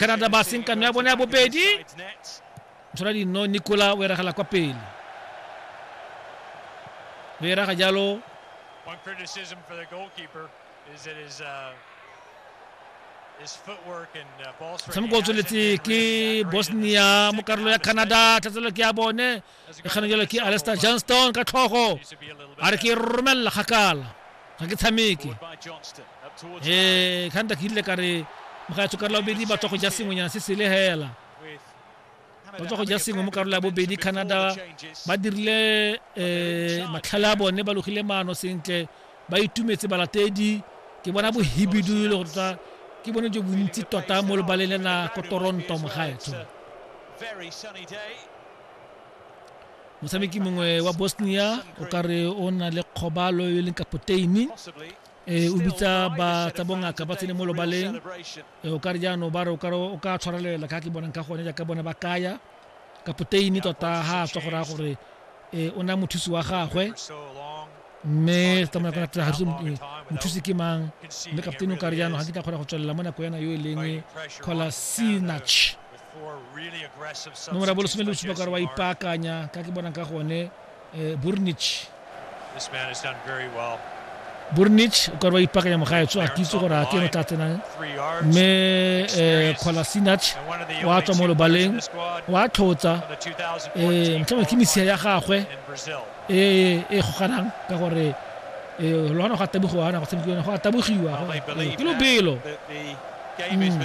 canada ba seng kano ya bone ya bobedi tshwara dino nicola o eragela kwa pele o eraga jalo One criticism for the goalkeeper is that his uh, tshameko o tsweletse ke bosnia mo karolo ya canada tlhatselo ke ya bone e kgana jalo ke alester johnston ka tlhogo a re ke e romelela kgakala ga ke tshameke ee kganta ke ile ka re mogaetsho karola bobedi ba tswa go ja sengwenyana se sele hela ba tswa go ja sengwe mo karola ya bobedi canada ba dirile um matlhale a bone ba logile maano sentle ba itumetse balatedi ke bona bohibidu le go tota ke bone jo bontsi tota mo lebaleng le na ko toronto mogaetsho motshameki mongwe wa bosnia o ka re o na le kgobalo e leng kapoteini e o bitsa ba tsa bongaka ba tsene mo lobaleng o ka re jaanong ba re o ka tshwarelela ka ke bonang ka gone jaaka bone ba kaya kapoteini tota ga a tswa go raya gore o na mothusi wa gagwe mme tsamaya ka natla gase mothusi ke mang mme kapteini o ka re jaanong ga ke tla kgona go tswelela mo nako yana yo e leng cola sinach nomora bolesome le bosupa kare wa ipaakanya ka ke bonang ka gone um burnich burnich o kare wa ipaakanya mogaetso a kitse gore a ke no tla tsenang mme um kgolasinach wa tswa mo lobaleng wa tlhotsa um motlhama ke mesia ya gagwe e e goganang ka gore e lo ana go atabogiwa ana go tshamekiwa go atabogiwa ke lobelo mm.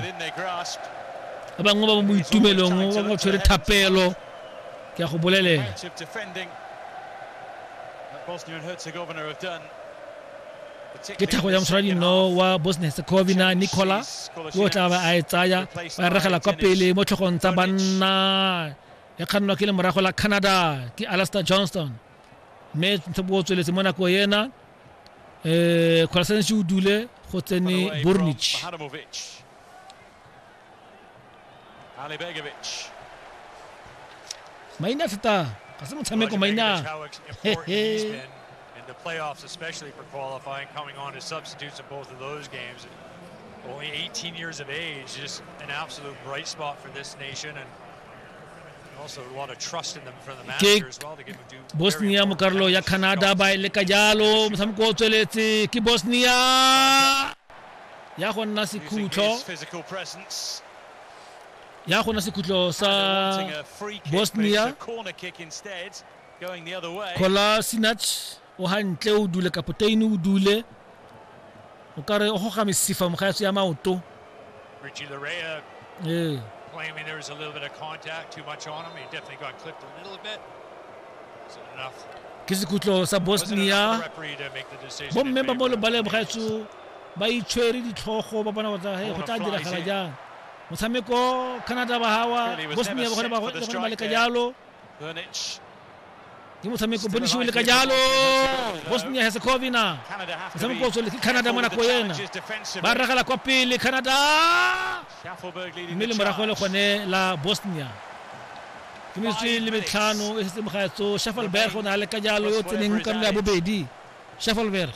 ba bangwe ba mo itumelong ba ba tshwere thapelo ke ya go bolelela ke thago ya moshwaradino wa bosnia herzegovina nicola yo o tla ba a e tsaya ba regela kwa pele mo tlhogong tsa banna e kgannwa ke lemorago la canada ke alaster johnston mme ntse bo tsweletse mo nako ena um kgolasanese o dule go tsene bornich maina thata ga se motshameko maina the playoffs, especially for qualifying, coming on as substitutes in both of those games. And only 18 years of age, just an absolute bright spot for this nation. And ke bosnia mo karolo ya canada ba e leka jalo motshameko o tsweletse ke bosnia ya go nna sekhutlo ya go nna sekhutlo sa bosnia kolasinac o hantle o dule kapoteine o dule o ka re o goga mesifa mogaetso ya maoto Richie Larea ee claiming there was a little bit of contact too much on him he definitely got clipped a little bit wasn't enough ke sekhutlo sa bosnia bomme ba mo lebaleng mogaetso ba itshwere ditlhogo ba bona gore go tla diragala jang motshameko canada ba gawa bosnia ba gone ba leka jalo ke motshameko bonisiwe le ka jalo bosnia herzegovina motshameko o tsweletse ke canada mo nako ena ba ragela kwa pele canada mme le morago le gone la bosnia ke metsotso le metlhano e setse mogaetso shuffleberg o ne a le ka jalo yo tseneng karolo ya bobedi shuffleberg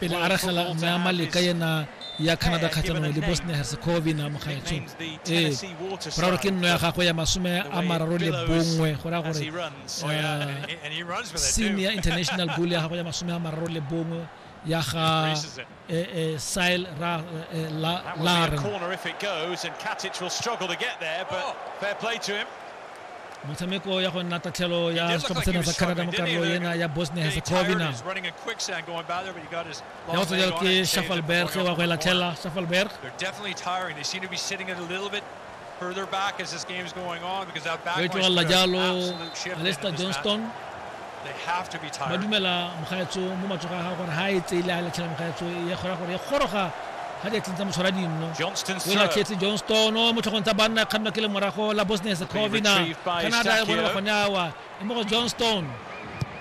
pele a ragela mme a maleka yena ya canada kgatlhanong le bosnia herzegovina mogaetsho ee boraro ke nno ya gagwe ya masome a mararo le bongwe go raya gore eh, senior international goal ya gagwe ya masome a mararo le bongwe ya ga eh, eh, sile laren motshameko ya go nna tatlhelo ya setlhopha sena sa canada mo karolo ena ya bosnia herzegovina ya go tsejalo ke shafalberg wa go e latlhela shafalberg o e tlogelela jalo alester johnston ba dumela mogaetso mo matsogo a gago gore ga e tseile a latlhela mogaetso e kgora gore e goroga ga di atleng tsa motshwara dinno o latlhetse johnston mo tlhogong tsa banna e kgannwa ke le morago la bosnia secovina canada e bonela gone awa e mo go johnston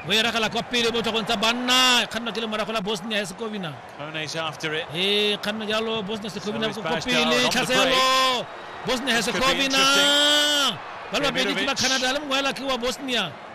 o e ragela kwa pele mo tlhogong tsa banna e kgannwa ke le morago la bosnia ya secovina e kgannwa jalo bosnia secovina kwa pele tlhaselo bosnia ya secovina ba le babedi ke ba canada le mongwe ela ke wa bosnia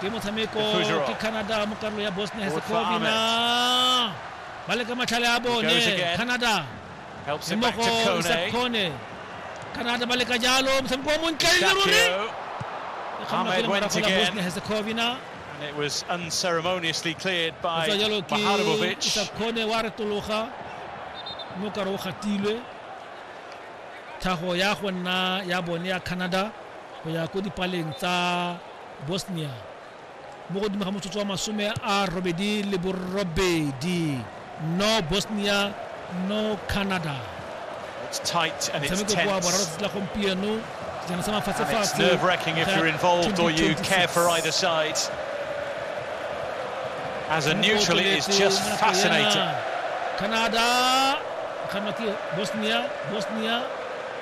ke motshameko ke canada mo karolo ya bosnia herzegovina ba le ka matlhale a bone canada le mo go isakone canada ba le ka jalo motshameko wa montle e le ruri e kgona go lemara fela bosnia herzegovina And it was unceremoniously cleared by Maharovic. Isakone wa retologa mo kare o gatilwe tlhago ya go nna ya bone ya canada go ya ko dipaleng tsa bosnia mo godimo ga motsotso wa masome a robedi le borobedi no bosnia no canada motshameko kwa boraro tsatsi la gompieno sejana sa mafatshefatshe As a neutral, it is just fascinating. Canada, Bosnia, Bosnia,